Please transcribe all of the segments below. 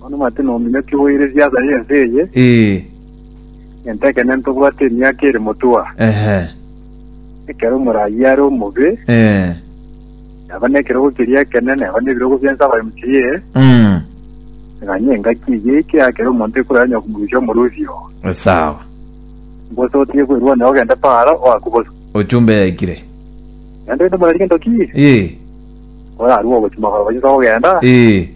Bono mati nominyoki bwaireria ase ense eye, Ee, egento ekenene tobwate emiaka ere motua. ehe, Ekero omoraai are omobe, ee, neba nekerogo keria ekenene, neba nebirogo bi'ense abaye mochirie, mm, aganye engaki eye eike akere omonto ekorwa yanya komorusia omorusi oo. esawa. Mbose otige kwerwania ogende Paara, oakwe bosa. Ochumbe yaikire. Naende rende morarigento ki? Ee, Orarue ogochia magoro gochia inse kogenda, Ee,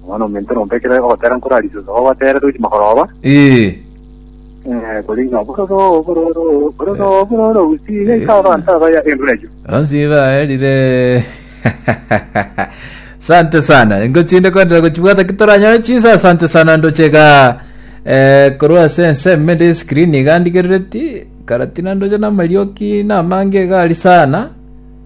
Omwana-o-mente nompe ekero ogotera nkorarisie inse kogotere tochi magoroba, ee. eh, kori ng'a bororo, bororo, bororo, bororo, usi, yaika abanto abaya endura eyio. Onsi baerire sante sana ngochinde kwendera gochibwata kitoranyore chisa sante sana ndochega eh, korwa ase enseme ndi screen iga ndigerereti karatina ndoche namarioki namange gari sana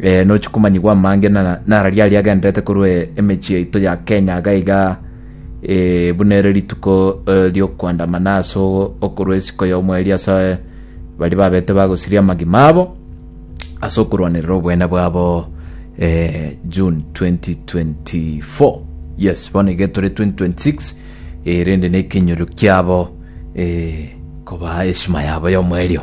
eh, nochi komanyigwa amange na- nararia aria agenderete korwa e- emechie yaito ya kenya iga iga eh, buna ere rituko eh, riokwandamana ase o- okorwa esiko ya omweri ase eh, baria babete bagosiria amagima abo ase okorwanerera obwene bwabo eh, june 2024 yes bono iga etore 2026 eh, rende nekenyoro kiabo eh, koba eshima yabo ya omwerio